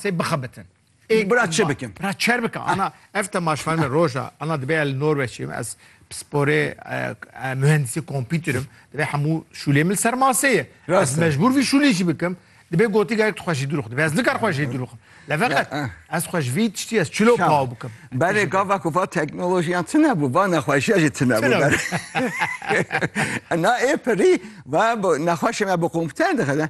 Sê bixebitin. Ê bira çi bikin? Bira çer bikin. Ana ev te maş ferme roja. Ana dibe el Norveç'im ez sporê mühendisi kompüterim. Dibe hemû şûlê min ser maseyê. Ez mecbur vî şûlê jî bikim. Dibe gotî gerek tu xweşî dûr xwe. Dibe ez nikar xweşî dûr xwe. Le veqet ez xweş vî tiştî ez çilo paw bikim. Berê gava ku va teknolojiyan tine bû, va nexweşiya jî tine bû. Na ê pirî va nexweşê me bi kompüter dixile.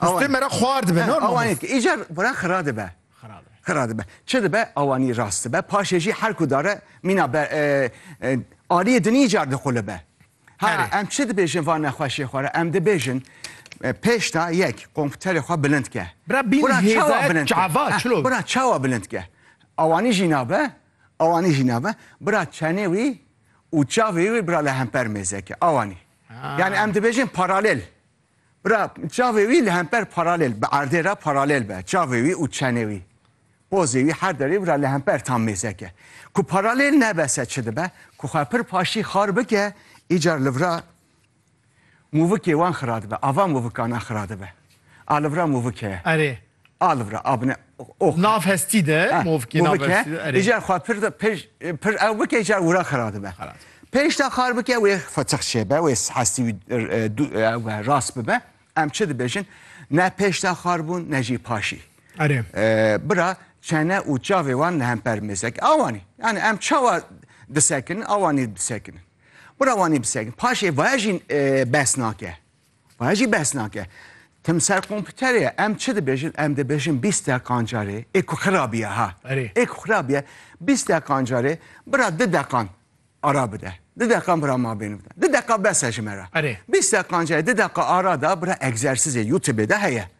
Kuştê me re xwar dibe. He, awanê ki îcar bura xira dibe. Xira dibe. Çi dibe awanî rast dibe. Paşê jî her ku dare mîna be e, e, aliyê din îcar dixulibe. Ha Erê. em çi dibêjin va nexweşê xwe re? Em dibêjin e, pêşta yek komputerê xwe bilind ke. Bira bîn Bura çawa hêzayek bilind ke? çava, He, çilo. Bura çawa bilind ke? Awanî jî nabe, awanî jî nabe. Bira çenê wî û çavê wî bira li hemper mêze ke. Awanî. Yani em dibêjin paralel. Bira, çavê wî li hemper paralel, bi erdê re paralel be. Çavê wî û çenê wî, pozê wî her derê bira li hemper tam mêzek e. Ku paralel nebe se çi dibe? Ku xwe pir paşî xar bike, îcar li vira mûvikê wan xira dibe. Ava mûvikan a xira dibe. A li vira mûvik heye. Erê, A li vir e, a bine ox. Nav hestî de movkê nav bike, hestî de erê. Îcar xwe pir de pej pir ew bike îcar wira xira dibe. Xira dibe. Pêş de xar bike wê fetix çêbe, wê hestî wî ew e rast bibe. Em çi dibêjin? Ne pêş de xar bûn ne jî paşî. Erê. Bira çene û çavê wan li hemper mêzek. Awanî. Yani em çawa disekinin awanî disekinin. Bira wanî bisekinin. Paşê vaya jî bes nake. Waya jî behs nake. Tim ser kompûterê ye. Em çi dibêjin? Em dibêjin bîst deqan carê. Ê ku xirabiye ha. Erê. Ê ku xirabiye bîst deqan carê bira di deqan ara bide. Di deqan bira mabêne bide. Di deqa bes e ji me re. Erê. Bîst deqan carê di deqa ara da bira egzersizê YouTubeê de heye.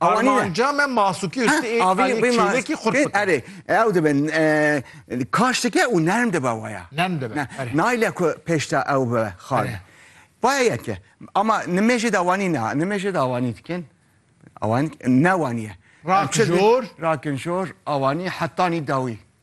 Armanca me masûkî û ştê aliyê çêlekî xurt bikin. Erê, ew dibin kaş dike û nerm dibe waya. Nerm dibe. Nayle ku pêşta ew bi xal. Vaya yeke. Ama nimêjê de wanî ne. Nimêjê de awanî dikin. Awan ne waniye. Rakin jor. Rakin jor awanî hetanî dawî.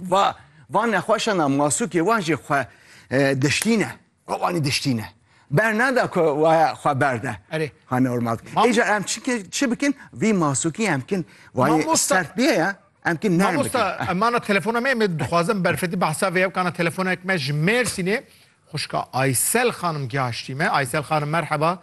va van nexweşan a masûkê wan jî xwe diştîne wanî diştîne bernada ku waya xwe berde Erê. xwe normal Êca em çike çi bikin vî masûkî em kin wayê Mamosta- sert bê ya em kin nerm bikin. Mamosta emana telefona me me dixwazim berfetî behsa vê hevkana telefonek me ji Mêrsînê xwişka Aysel xanim gihaştî me. Aysel xanim merheba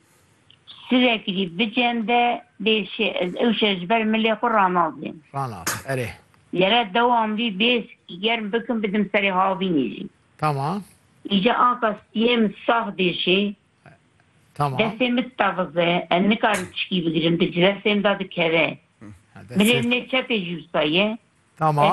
Sirê kirî bicên de bê şê ez ew şê ji ber milê xwe ranazêm. Ranaze erê. Lere dewam bî bê sikî germ bikim bidim serê havînê jî. Tamam. Îca anka siyê min sax bê şê. Tamam. Destê min teviz e ez nikarim tişkî bigirim di cilesê min de dikeve. Milê min ê çepê jî wisa ye. Tamam.